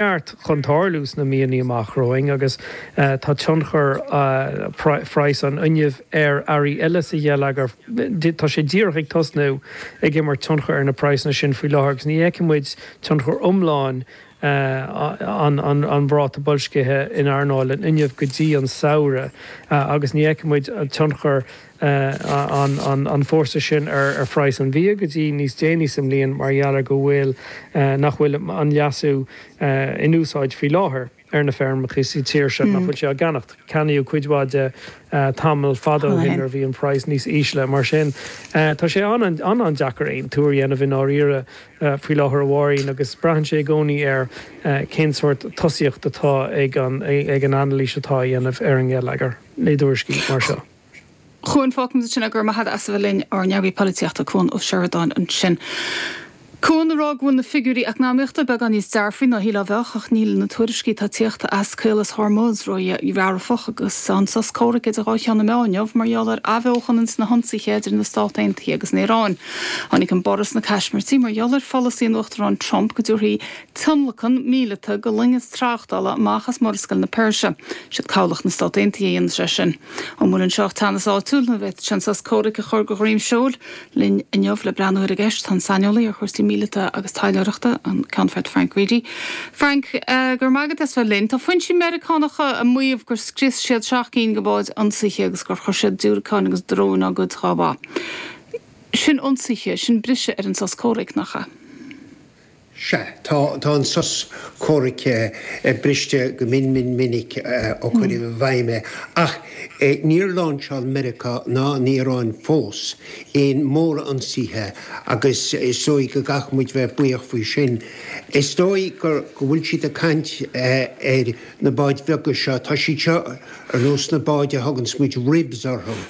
neart chun tarlú sna míonna amach romhainn agus tá tionchar phraghas an fhuinnimh ar earraí eile sa gheilleagar, tá sé díreach ag tosnú, ag imirt tionchair ar na praghsanna sin faoi láthair agus ní fheicfidh muid tionchar iomlán an ráta boilscithe in earnáil an fhuinnimh go dtí an samhradh agus ní fheicfidh muid tionchar iomlán an fhórsa sin ar phraghas an bhia go dtí níos déanaí sa mbliain mar gheall ar go bhfuil nach bhfuil an leasú in úsáid faoi láthair ar na feirmeacha sa tír seo nach bhfuil sé á cheannacht. Ceannaíodh cuid mhaith de tamall fada ó shin nuair a bhí an praghas níos ísle. Mar sin tá sé an-an-deacair aon tuar a dhéanamh i ndáiríre faoi láthair a Mháirín agus braitheann sé i gcónaí ar cén sórt tosaíocht atá ag an ag an anailís atá á dhéanamh ar an ngeilleagar i dtuairiscí mar seo. Cuan, fágfaidh muid ansin é, go raibh maith agat as a bheith linn, ár n-eagarthóir polaitíochta, Cuan Ó Seireadáin ansin. Cuan a rá go bhfuil na figiúirí eacnamaíochta beagán níos dearfaí ná a shílfeá a bheadh, ach níl na tuairiscí atá ag tíocht as Caolas Hormuz ró-dhearfach agus tá an sos comhraic idir dhá cheann na meá inniu mar gheall ar athbheochan ins na hionsaithe idir na Stáit Aontaithe agus an Iaráin. Tháinig an borradh sna caismirtí mar gheall ar pholasaí an Uachtaráin Trump go dtabharfaí tionlacan míleata do loingeas tráchtála amach as Murascaill na Peirse. Siad cabhlach na Stát Aontaithe a dhéanfas é sin. An bhfuil anseo teannas áitiúil nó an bhféadfadh sé an sos comhraic a chur de dhroim seoil? Linn inniu le breathnú ar an gceist tá an saineolaí ar chúrsaí míleata agus taidhleoireachta, an Ceannfort Frank Reidy. Frank, go raibh maith agat as bheith linn. Tá foinsí Meiriceánacha ag maíomh gur scrios siad seacht gcinn de bháid ionsaithe agus gur chuir siad diúracáin agus dróin dá gcuid dhá mbá. Sin ionsaithe, sin briseadh ar an sos comhraic, nach ea? Sea, tá an sos comhraic briste go mion mion minic ó cuireadh i bhfeidhm é, ach níor láinseáil Meiriceá ná an Iaráin fós aon mhórionsaithe agus is dóigh go gcaithfidh muid bheith buíoch faoi sin. Is dóigh go bhfuil siad ag caint ar na báid bheaga seo, tá siad seo ar nós na báid a thugann muid ribs orthu,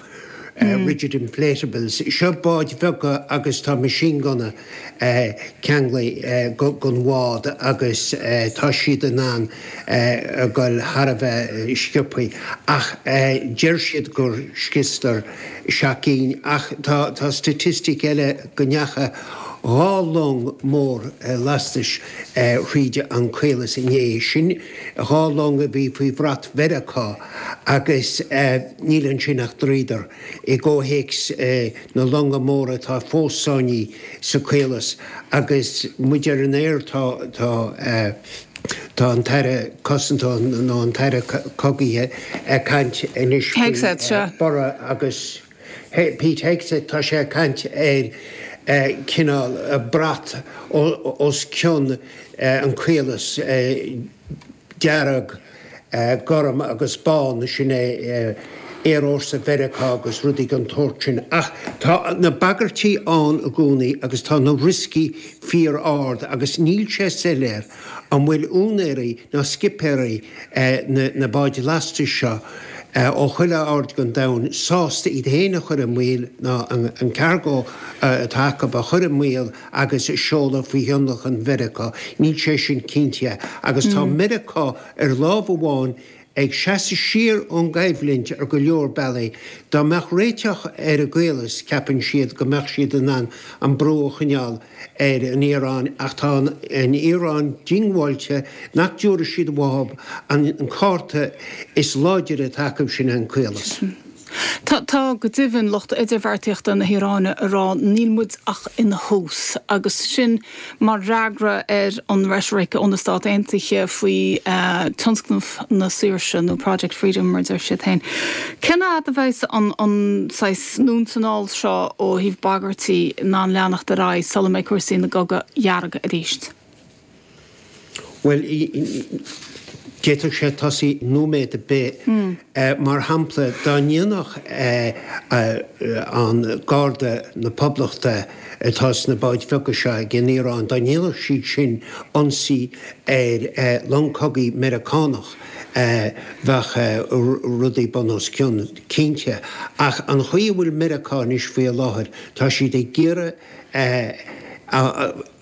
rigid inflatables. Seo báid bheaga agus tá machine gunna. ceangailte dhon bhád agus tá siad in ann a ghoil thar a bheith sciobtha ach deir siad gur scriosadar seacht gcinn ach tá staitistic eile go ndeacha dhá long mór lastais thríd an caolas inné sin dhá long a bhí faoi bhrat Mheiriceá agus níl ansin ach dríodar. i gcomhthéacs na longa móra atá fós sáinnithe sa caolas agus muid ar an aer tá an tAire Cosanta nó an tAire Cogaithe ag caint anois ar maidin agus Pete Hegseth tá sé ag caint ar cineál brat os cionn an caolas dearg Gorm agus bán, sin é Aerfhórsa Mheiriceá agus rudaí den tsórt sin. Ach tá na bagairtí ann i gcónaí agus tá na rioscaí fíor-ard agus níl sé soiléir an bhfuil úinéirí ná scipéirí na báid lastais seo ó chuile aird den domhan sásta iad féin a chur i mbaol ná an cargo atá acu a chur i mbaol. agus a seoladh faoi thionlacan Mheiriceá, níl sé sin cinnte, agus tá Meiriceá, ar lámh amháin, ag seasamh siar ón gcoimhlint ar go leor bealaí. Dá mbeadh réiteach ar an gcaolas, ceapann siad go mbeadh siad in ann an brú a choinneáil ar an Iaráin, ach tá an Iaráin diongbháilte nach dtabharfaidh siad amach an cárta is láidre atá acu, sin é an caolas. Tá, tá, go deimhin, lucht idirbheartaíochta na hIaráine ag rá 'níl muid ach ina thús', agus sin mar fhreagra ar an reitric ó na Stáit Aontaithe faoi tionscnamh na saoirse, nó Project Freedom, mar a deir siad féin. Cén fhad a bheas an, an saghas anonn is anall seo ó thaobh bagairtí in ann leanacht ar aghaidh sula mbeidh cúrsaí ina gcogadh dearg arís? Bhuel, d'fhéadfadh sé tosaí nóiméad ar bith. Mar shampla, dá ndéanfadh Garda na Poblachta atá sna báid bheaga seo ag an Iaráin, dá ndéanfadh siad sin ionsaí ar long cogaidh Meiriceánach, bheadh rudaí bun os cionn, cinnte. Ach an chaoi a bhfuil Meiriceá anois faoi láthair, tá siad ag iarraidh,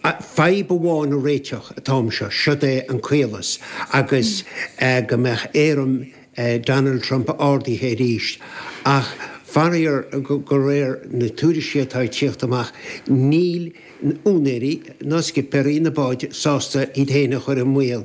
Fadhb amháin a réiteach atá anseo, seod é an caolas, agus go mbeadh éirim Donald Trump ardaithe arís. Ach faraor, de réir na tuairiscí atá ag tíocht amach, níl úinéirí ná scipéirí na báid sásta iad féin a chur i mbaol.